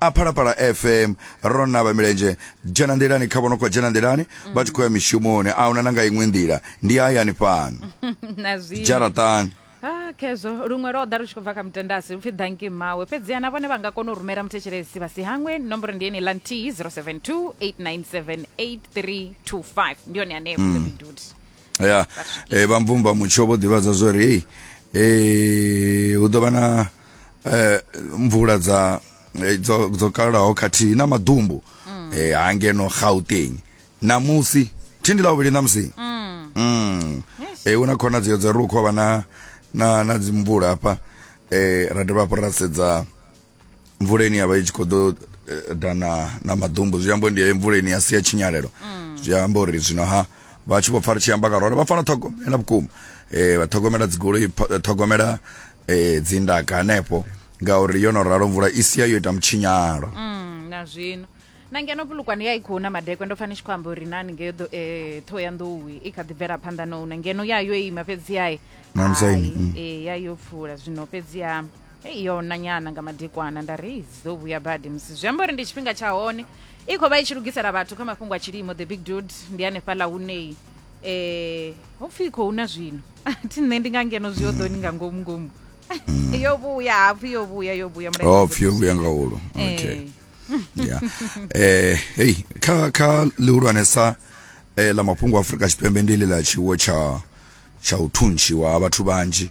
a phalaphala fm ro navha milenzhe dzhena nḓilani kha vhono khou dzhena nḓilani vha tshi khou ya mishumoni a huna na nga iṅwe nḓila ndi hayani fhano na zwino dzharaṱani Ah, khezwo luṅwe lwo ḓa lu tshi khou bva kha mutendasi upfi danki mmawe fhedziha na vhone vha nga kona u rumela muthetshelesi vha si hangwe nomboro ndi yeneiḽa nthihi 072 897 8325 ndi yone hanefho mm. ya eh, vha mvumba mutsho vho ḓivhadza zwo ri hei eh, hu ḓo vha na eh, mvula dza eh, dzo dzo kalaho khathihi na maḓumbu mm. eh, ha ngeno gauteng namusi thindi ḽa vhuvhili namusi mm. mm. eh, hu na khonadzeo dza ri u khou vha na na na dzimvula hafha eh, ra dovha hafhu ra sedza mvula ine yavha i tshi khou ḓo eh, dana na maḓumbu zwi amba uri ndi heyo mvula ine ya sia tshinyalelo zwi amba uri zwino ha vha tshi vho pfa ri tshi amba nga role vha fanela ṱhogomela vhukuma eh vha ṱhogomela dzigoloi pho- ṱhogomela eh dzindaka hanefho ngauri yo no ralo mvula i sia yo ita mutshinyalo Mm, na zwino na ngeno vhulukwane ya i khou na madekwe ndo fani tshi khou amba uri nani ngeyo ḓo- eh, ṱhoho ya nḓowi i kha ḓi bvela phanḓa no una ngeno ya yo ima fhedzi yae Na musaini, mm. ee ya yo pfula zwino fhedzi ya hei yo na nyana nga madekwana nda ri dzi ḓo vhuya badi musi zwi amba uri ndi tshifhinga tsha hone i khou vha i tshi lugisela vhathu kha mafhungo a tshilimo the big dude ndi hanefhaḽa huneyi eh ho pfhi khou na zwino thi nṋe ndi nga ngeno zwi oḓoni nga ngomu ngomu yo vhuya hapfhi yo vhuya yo vhuya mulaedza oh pfhi yo vhuya nga hulu okay Eh, ya eh hey kha kha lihulwanesa eh la mafhungo a Afrika Tshipembe ndi ḽi ḽa tshiwo tsha tsha u thuntshiwa ha vhathu vhanzhi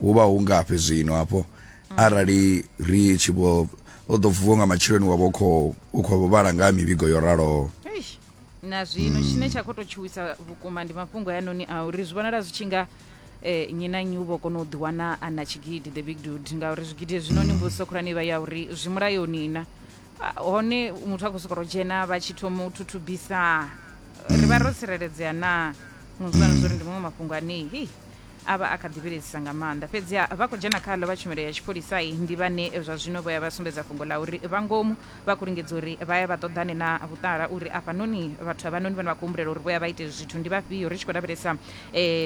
hu vha hu ngafhi zwino hafho arali ri tshi vho o ḓo vuwa nga matsheloni wa vho khou u khou vho vhala nga ha mivhigo yo raloho Eish, na zwino tshine tsha khou tou tshuwisa vhukuma ndi mafhungo hayanoni a uri zwi vhonala zwi tshi nga eh, nnyi na nnyi u vho kona u ḓiwana a na tshigidi the big dude ngauri zwigidi hezwinoni mbudziso khulwane ivha ya uri zwi mulayoni na Ah, hone muthu a khou sokou dzhena vha tshi thoma u thuthubisa ri vha ro tsireledzea na no zwi vhona zwo uri ndi maṅwe mafhungo anei hei A vha a kha ḓi vhilaedzisa nga maanḓa. Fhedziha vha khou dzhena khaḽo vha tshumelo ya tshipholisa ndi vhane zwa zwino vho ya vha sumbedza fhungo ḽa uri vha ngomu vha khou lingedza uri vha ya vha ṱoḓane na vhuṱala uri afhanoni vhathu havhanoni vhane vha khou humbulela uri vho ya vha ite zwithu ndi vhafhio ri tshi khou lavhelesa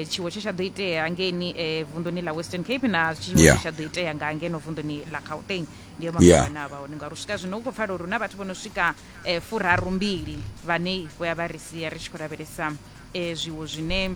tshiwo tshe tsha ḓo itea ngeni vunḓuni ḽa Western Cape na tshiwo tshe tsha ḓo itea nga ngeno vunḓuni ḽa Gauteng. Ndi yo mafhungo ane a vha hone ngauri u swika zwino hu khou pfala uri hu na vhathu vho no swika furarumbili vhane vho ya vha ri sia ri tshi khou lavhelesa zwiwo zwine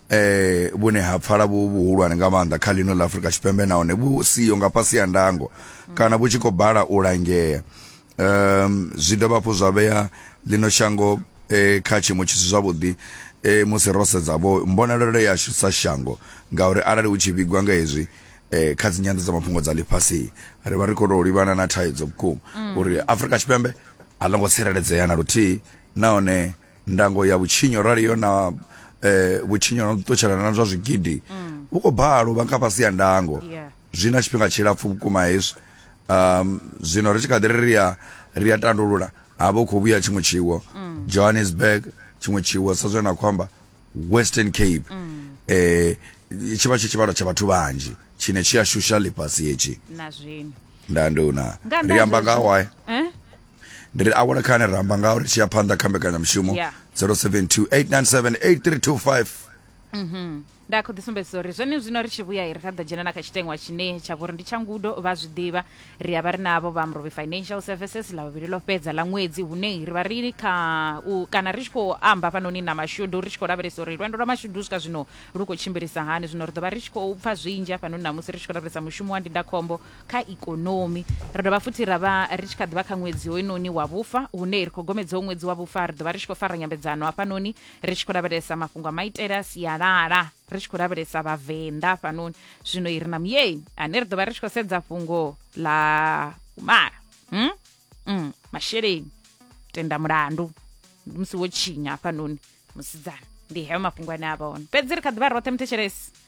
eh vhune ha pfala vhu vhuhulwane nga maanḓa kha ḽino ḽa Afrika Tshipembe nahone vhu siyo nga fhasi ya ndango kana vhu tshi khou bala u langea um zwi dovha hafhu zwa vhea ḽino shango eh, kha tshiimo tshi si zwavhuḓi eh, musi ro sedza vho mbonalelo yashu sa shango ngauri arali hu tshi vhigwa nga hezwi eh, kha dzinyanḓo dza mafhungo dza ḽifhasi ri vha ri khou tou livhana na thaidzo vhukuma uri Afrika Tshipembe a ḽo ngo tsireledzea na luthihi nahone ndango ya vhutshinyo rali yo na eh, vhutshinyo na ṱutshelana na zwa zwigidi mm. vhu khou balo vha kha fhasi ya ndango yeah. zwi na tshifhinga tshilapfu vhukuma hezwi um zwino ri tshi kha ḓi ri ya ri ya tandulula ha vha khou vhuya tshiṅwe tshiwo mm. johannesburg tshiṅwe tshiwo sa zwe na khou amba western cape mm. eh tshi vha tshi tshivhalo tsha vhathu vhanzhi tshine tshi a shusha ḽifhasi hetshi na zwino nda nduna ri amba nga why eh ndi ri awela khani ri amba ngaho ri tshi ya phanḓa kha mbekanyamushumo Yeah. 072 897 8325 nda khou ḓisumbedzisa uri zwone zwino ri tshi vhuya ri ra ḓo dzhena na kha tshiteṅwa tshine tsha vhori ndi tsha ngudo vha zwi ḓivha ri a vha ri navho vha mrovi financial services ḽa vhuvhili ḽo fhedza ḽa ṅwedzi hune ri vha ri kha u kana ri tshi khou amba fhanoni na mashudu ri tshi khou lavhelesa uri lwendo lwa mashudu u swika zwino lu khou tshimbilisa hani zwino ri ḓo vha ri tshi khou pfa zwinzhi hafhanoni namusi ri tshi khou lavhelesa mushumo wa ndindakhombo kha ikonomi. Ri dovha futhi ra vha ri tshi kha ḓivha kha ṅwedzi hoyunoni wa vhufa hune ri khou gomedzaho ṅwedzi wa vhufa ri dovha ri tshi khou fara nyambedzano hafhanoni ri tshi khou lavhelesa mafhungo a maitele a sialala ri tshi khou lavhelesa vhavenḓa hafhanoni zwino i ri na muyeni ane ri dovha ri tshi khou sedza fhungo ḽa umala hmm? mm, masheleni tenda mulandu ndi musi wo tshinya hafhanoni musidzana ndi heyo mafhungo ane a vha one fhedzi ri kha ḓivha roṱhe muthetshelesi